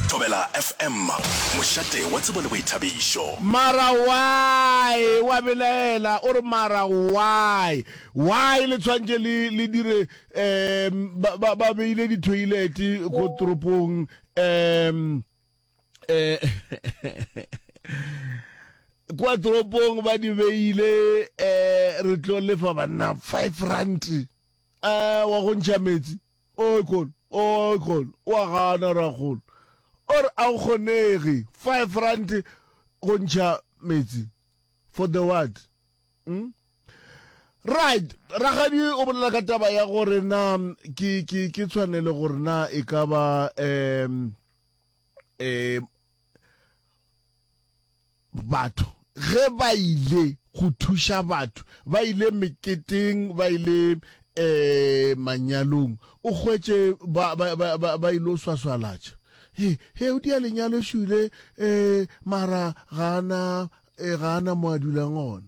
Thobela FM, mošate wa tsebo le boithabišo. Mara why wa belaela o re mara why why le tshwantše le le dire um ba ba ba beile di toilet ko toropong um eh kwa toropong ba di beile eh re tlo lefa banna 5 rand eh wa go ntšha metsi Oikgol, oikgol, o a gana rakgol, o re a go kgonege five rand go ntšha metsi for the what? Hm? Right, ragadi o bolela ka taba ya gore na ke ke ke tshwanele gore na e ka ba um um Batho ge ba ile go thuša batho, ba ile meketeng, ba ile um manyalong, o hwetše ba, ba, ba, ba, ba ile swaswalatša. He, he, o dia lenyalo šule, um mara ga a na, eh, ga a na mo a dulang gona.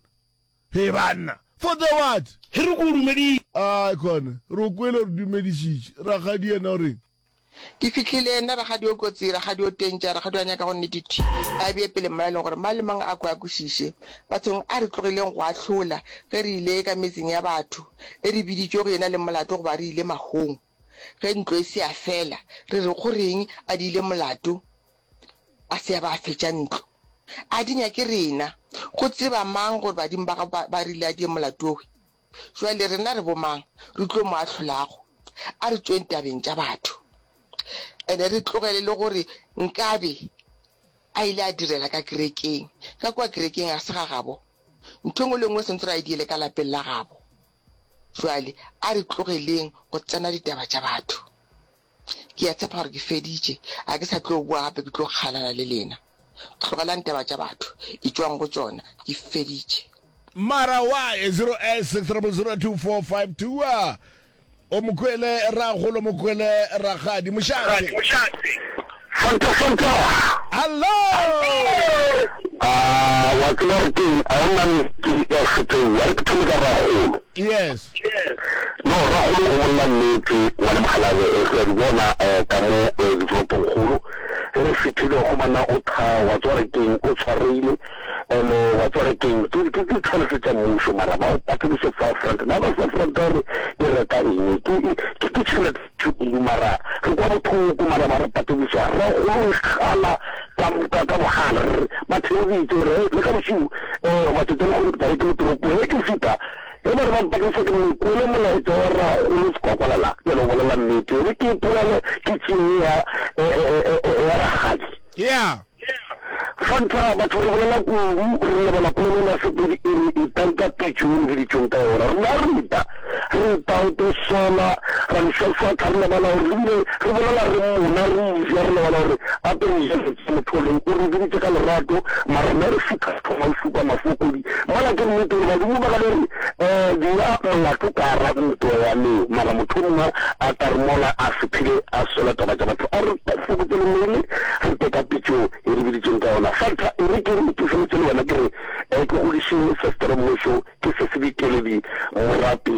He, banna, for the what? He, re ko o dumeditše. Ai, kone, re o kwele, re dumedišitše. Rakgadi yena o reng? Ke fihlile, nna Rakgadi o kotsi, Rakgadi o tentša, Rakgadi o a nyaka go nnete thi, a bee pele mma e leng gore mang le mang a kwe a kwešiše. Bathong a re tlogileng go ahlola ge re ile ka metseng ya batho, e re biditšwe go ena le molato goba re ile mahong. Ge ntlo e se ya fela, re re go reng a di ile molato a se ya ba a fetša ntlo? A di nyake rena go tseba mang gore badimo ba gabo ba rile a di ye molato we? Jwale rena re bomang re tlo mo ahlolago? A re tšweng tabeng tša batho ene re tlogele le gore nkabe a ile a direla ka kerekeng. Ka kwa kerekeng ga se ga gabo, ntho engwe le engwe sentse ra e diele ka lapeng la gabo. Jwale a re tlogeleng go tsena ditaba tša batho. Ke a tshepa gore ke feditše. A ke sa tlo boa gape, ke tlo kgalala le lena. Tlogelang taba tša batho, etšwang go tšona. Ke feditše. Mara why 0860002452 a o mo kwele rragolo mo kwele rakgadi mošate. Fanta Fanta. Hallo. A wa tseba re ke a ona le ke ya feteng wa re ke thome ka ragolo. Yes. No ragolo o monna nnete wa le magalane e se di bona eh, ka mo eh, di fo pongolo. Re fetile go mana o tha wa tswa re keng o tshwareile. Ene eh, wa tswa re keng ke ke ke tshwara se tsa mmuso mara ba o patse se fa front. Ba ba sa front re e reka eng ke ke ke tshwara Thukulu, mara re kwa bothoko, mara ba re patediša, ra kgolo re kgala ka, ka, ka bogale, re re, ba theeditše, re re, le ka bošego, ee, goba tšatši ya lehono, tla be ke le toropong, ge ke fihla, ge ba re ba mpatediša, ke no kwele molaetša wa rragolo Sekwakwalela, ke no bolela nnete, e be ke ipolele ke tšie ye ya, ya, ya, ya, ya rakgadi. Yeah. Fa ntlha, batho re bolela kudu, re lebala polelelo ya Sepedi e re, Itang ka pitšo ye le biditšweng ka yona. Rena re ita, re ita o tlo sola, ra di swaswatha, re lebala gore re bile re bolela re mmona, re eja, re lebala gore gape re ja lentšu. Motho o leng o re biditše ka lerato, mara rena re šutha thoma o šupa mafoko. Mola ke nnete gore badimo ba ka be re bea molato ka gare ga ntwa ya leo, mara mohlomongwe a ka re mola a se phele a sola taba tša batho. A re fokotše lengwele re tle ka pitšo ye re biditšweng ka yona. Fatha, e re ke re itufeletše le wena ke re ke godiše Sestere Mmusho, ke se se dikeledi morape.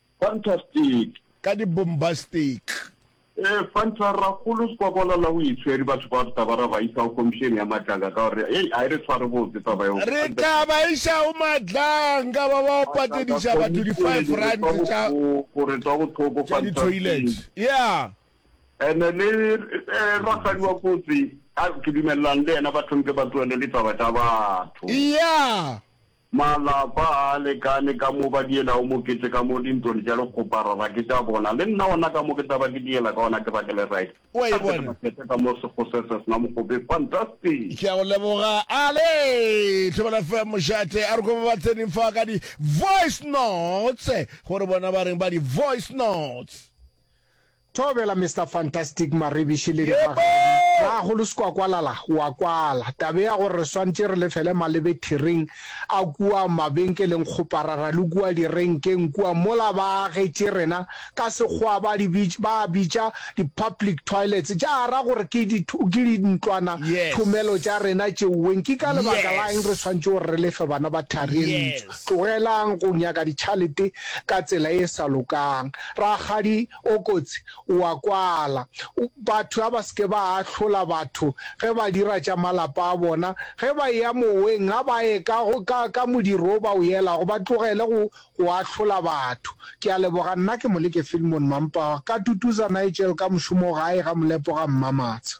Fantastic! Ka di bombastic! E fanta rakgolo sekwakwala la o itshweri batho ba re taba ra ba isa go komišene ya matlanga ka gore hey a e re tshware botse taba yo re tla ba iša go matlanga ba ba o patediša batho di five rand tša go re twa go thoko fa di toilet ya ene le rakgadi wa kotsi a ke dumellang le yena ba thompe ba tloele le taba tša batho ya Malapa ga a lekane ka mo ba dielago mokete ka mo dintwon tša lekgoparara ke tša bona le nna gona ka mo ke tla ba ke diela ka gona ke ba ke le right. O a e bona? Ga se ke makete ka mo sekgo se se sena mogope. Fantastic! Ke a go leboga. Ale! Thobela fm mošate a re ko ba ba tsening fa ka di voice notes gore bona ba reng ba di voice notes. Thobela Mister Fantastic Marebiši le Dibagadi ba go le Sekwakwalala wa kwala taba ya gore re swantše re lefele malebe thiring a kua mabenkeleng kgoparara le kua direnkeng kua mola ba agetše rena ka sekgowa ba di bitša ba a bitša di public toilets tša ra gore ke di ke di ntlwana thomelo tša rena tšeuweng ke ka lebaka la eng re swantše gore re lefe bana ba thari e ntsho Tlogelang go nyaka ditšhalete ka tsela e sa lokang. Rakgadi o kotsi o a kwala. Batho a ba se ke ba ahlola batho ge ba dira tša malapa a bona. Ge ba eya moweng a ba ye ka, ka, ka modiro o ba o yelago, ba tlogele go, go ahlola batho. Ke a leboga. Nna ke Moleke Filmon Mampawa, ka tutuza Nigel ka mošomo gae ga Molepo ga Mmamatsha.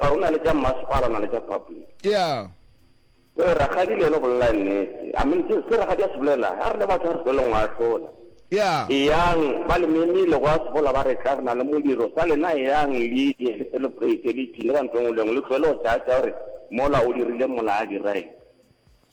Ga go na le tša mmasepala na le tša public. Yeah. Ee, rakgadi le yena o bolela nnete. I mean, se rakgadi a se bolela, ha re le batho ha re tloleng go ahlola. Yeah. Eyang, ba le memile go a sebola ba re tla re na le modiro, sa lena eyang le ye le celebrate le ipshine ka ntho e nngwe le e nngwe, le tlohele go tšaatšaa gore mola o dirile mola a dira eng.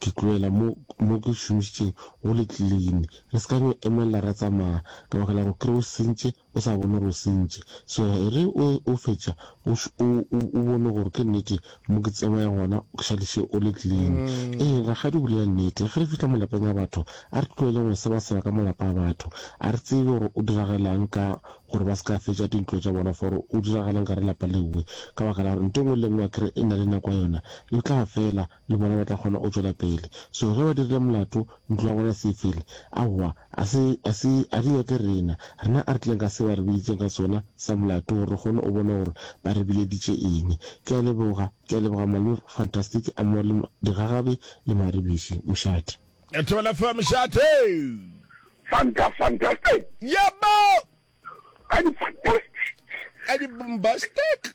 Ke tlohela mo, mo ke šomišitšeng go le clean. Re se ka no emelela ra tsamaya, ke bakela go kry o sentše o sa bone gore o sentše. So ge o, o fetša o, o, o, o bone gore ke nnete mo ke tsamaya gona ke šadiše o le clean. Ee, rakgadi o bolela nnete. Ge re fihla malapeng a batho, a re tlohele go sebaseba ka malapa a batho. A re tsebe gore o diragalaang ka gore ba se ka fetša dintlo tša bona for o diragalaang gare lapa lewe. Ka baka la gore nto engwe le engwe akere e na le nako ya yona, yo tla fela. le bona ba tla kgona go tšwela pele. So ge ba dirile molato, ntlo ya bona se e fele. Aowa, a se, a se, a di nyake rena. Rena a re tleng ka se ba re biditseng ka sona sa molato gore re kgone go bona gore ba re bileditše eng. Ke a leboga, ke a leboga Malome Fantastic a mo le digagabi le maribiši. Mošate. Thobela fa mošate. Fanta fantastic. Yebo. Ka di fantastic. Ka di bombastic.